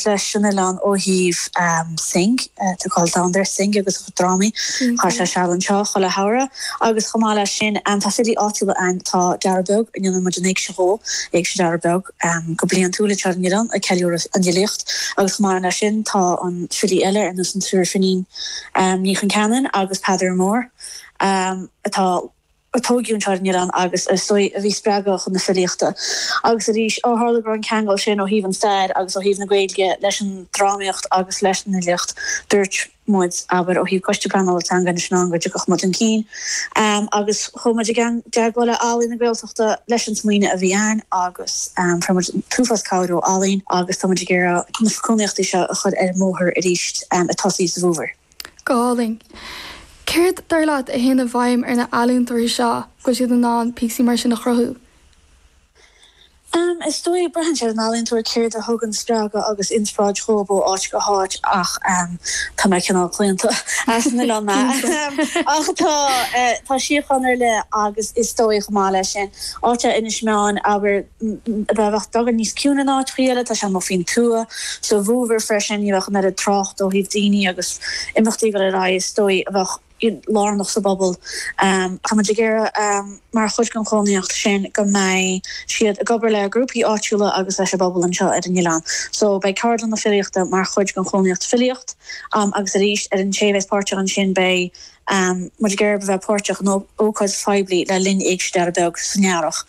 leis an oileán ó thaobh Synge, tá cáil domhanda ar Synge agus a drámaí. Chaith sé seal anseo chuile shamhradh agus chomh maith leis sin tá filí áitiúla ann, tá Dara Beag a ndéanann muid an Éigse dhó, Éigse Dhara Beag, go bliantúil anseo ar an oileán ag ceiliúradh an fhilíocht agus chomh maith leis sin tá filí eile ar nós an triúr Finín, Ní Chonceanainn agus Peadar Mór atá. a tóigeadh anseo ar an oileán agus is dóigh a bhí spreagadh chun na filíochta agus arís ó tharla go raibh an ceangal sin ó thaobh an stair agus ó thaobh na Gaeilge leis an drámaíocht agus leis an fhilíocht dúirt muid abair ó thaobh Coiste Pleanála Teanga Inis Meáin go dtiocfadh muid chun cinn agus chuaigh muid i dteagmháil le Ealaín na Gaeltachta leis an smaoineadh a bhí ann agus fuair muid an t-uafás cabhair ó Ealaín agus tá muid ag iarraidh na cónaíochtaí seo a chur ar an mbóthar arís ag tosaí sa bhfómhar. Go hálainn. Céard, dar leat, a théann i bhfeidhm ar na healaíontóirí seo go bhfuil siad in ann píosaí mar sin a chruthú? Em, is dóigh, braitheann sé ar an ealaíontóir céard a thugann spreagadh agus inspioráid dhóibh ó áit go háit ach, em, tá mé cineál claonta, as an oileán mé, ahem, ach tá, eh, tá síocháin ar leith agus is dóigh chomh maith leis sin, áit, Inis Meáin, abair, b'fhéidir beagán níos ciúine ná áiteachaí eile, tá sé amuigh faoin tuath, sa bhfómhar freisin, ní bheadh an oiread trácht ó thaobh daoine agus imeachtaí ag dul ar aghaidh is dóigh a bheadh lárnach sa bpobal. Táimid ag iarraidh mar chuid den chónaíocht sin go mbeidh siad ag obair le grúpaí áitiúla agus leis an bpobal anseo ar an oileán so beidh ceardlanna filíochta mar chuid den chónaíocht, filíochta agus arís ar an té a bheas páirteach ansin beidh. muid ag iarraidh a bheith páirteach in ócáid phoiblí le linn Éigse Dhara Beag san Earrach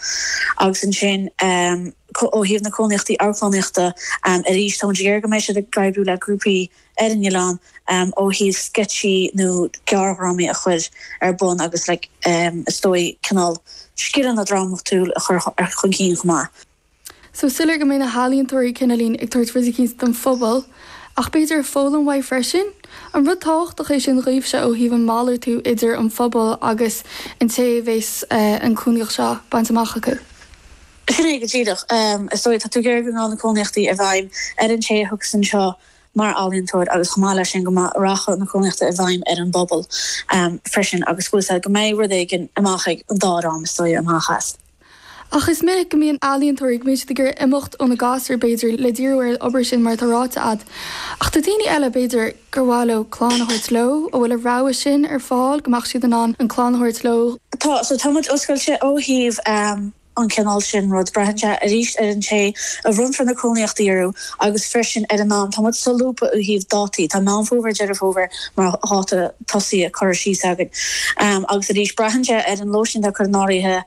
agus ansin ó thaobh na cónaíochtaí amharclannaíochta arís tá muid ag iarraidh go mbeidh siad ag oibriú le grúpaí ar an oileán ó thaobh sceitsí nó gearrdhrámaí a chur ar bun agus is dóigh cineál scileanna drámatúil a chur chun cinn chomh maith. Is soiléir go mbeidh na healaíontóirí cineál ag tabhairt rud eicínt don phobal, ach b'fhéidir ag foghlaim uathu freisin? An rud tábhachtach é sin dhaoibhse ó thaobh an malartú idir an phobal agus an té a mbeidh an cónaíocht seo bainte amach acu? Sin é go díreach. Is dóigh, tá tú ag iarraidh go ngabhfaidh na cónaíochtaí i bhfeidhm ar an té a thiocfas anseo mar ealaíontóir agus chomh maith leis sin go rachadh na cónaíochta i bhfeidhm ar an bpobal freisin agus go bhfuil sé, go mbeidh rud éigin amach ag an dá dhream is dóigh amach as. Ach is minic go mbíonn ealaíontóirí, go mbíonn siad ag iarraidh imeacht óna gasúir, b'fhéidir, le díriú ar an obair sin mar atá ráite agat. Ach tá daoine eile, b'fhéidir, gur mhaith leo an chlann a thabhairt leo, an bhfuil an rogha sin ar fáil, go mbeadh siad in ann an chlann a thabhairt leo? Tá, so tá muid oscailte ó thaobh an cineál sin rud. Braithfidh sé arís ar an té a mbronnfar na cónaíochtaí orthu agus freisin ar an am. Tá muid solúbtha ó thaobh dátaí. Tá Meán Fómhair, Deireadh Fómhair mar dháta. tosaí a cuireadh síos againn. Agus arís, braitheann sé ar an lóistín atá curtha in áirithe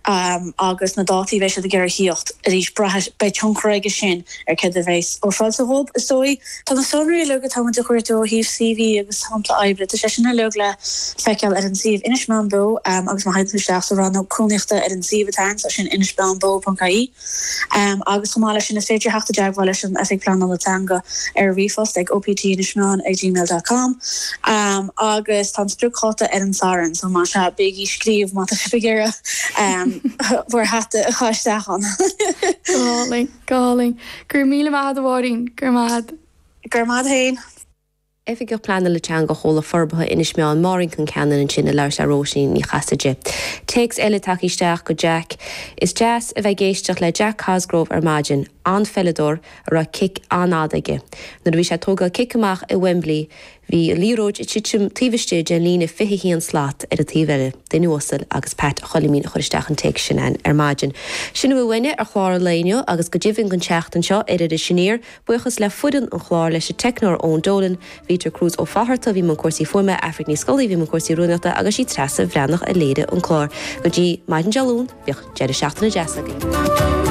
agus na dátaí a bheidh siad ag iarraidh a thíocht. Arís, braithfidh, beidh tionchar aige sin ar céard a bheas ar fáil sa hub, is dóigh. Tá na sonraí uilig atá muid a chuartú ó thaobh CV agus sampla oibre, tá sé sin uilig le feiceáil ar an suíomh. Inis Meáin Beo agus má théann tú isteach sa rannóg Cónaíochta ar an suíomh atá ann, tá sin inismeáinbeo.ie. Agus chomh maith leis sin, is féidir a theacht i dteagmháil leis an Oifigeach Pleanála Teanga ar ríomhphost ag optinismeain@gmail.com agus tá an spriocdháta ar an Satharn, so más ea, bígí ag scríobh má tá sibh ag iarraidh bhur hata a chur isteach ann! Go hálainn, go hálainn. Go raibh míle maith a'd a Mháirín. Go raibh maith a'd. Go raibh maith a'd fhéin. Oifigeach Pleanála Teanga Chomhlucht Forbartha Inis Meáin Máirín Concannon ansin ag labhairt le Róisín Ní Chasaide. Téacs eile tagtha isteach go Jack Is deas a bheith ag éisteacht le Jack Cosgrove ar maidin. An-pheileadóir a raibh cic an-fhada aige. Nuair a bhí sé ag tógáil cic amach i Wembley bhí an liathróid ag titim taobh istigh den líne 21 slat ar an taobh eile. Duine uasal agus Pat a Choilimín a chuir isteach an téacs sin ar maidin. Sin a bhfuil uainne ar chlár an lae inniu agus go deimhin don tseachtain seo ar Iris Aniar. Buíochas le foireann an chláir, leis an teicneoir Eoin Dolan, Vitor Cruz Ó Fátharta a bhí i mbun cúrsaí fuaime, Aifric Ní Scolaí a bhí i mbun cúrsaí rúnaíochta agus sí Treasa Bhreathnach a léirigh an clár. Go dtí maidin Dé Luain bíodh deireadh seachtaine deas agaibh.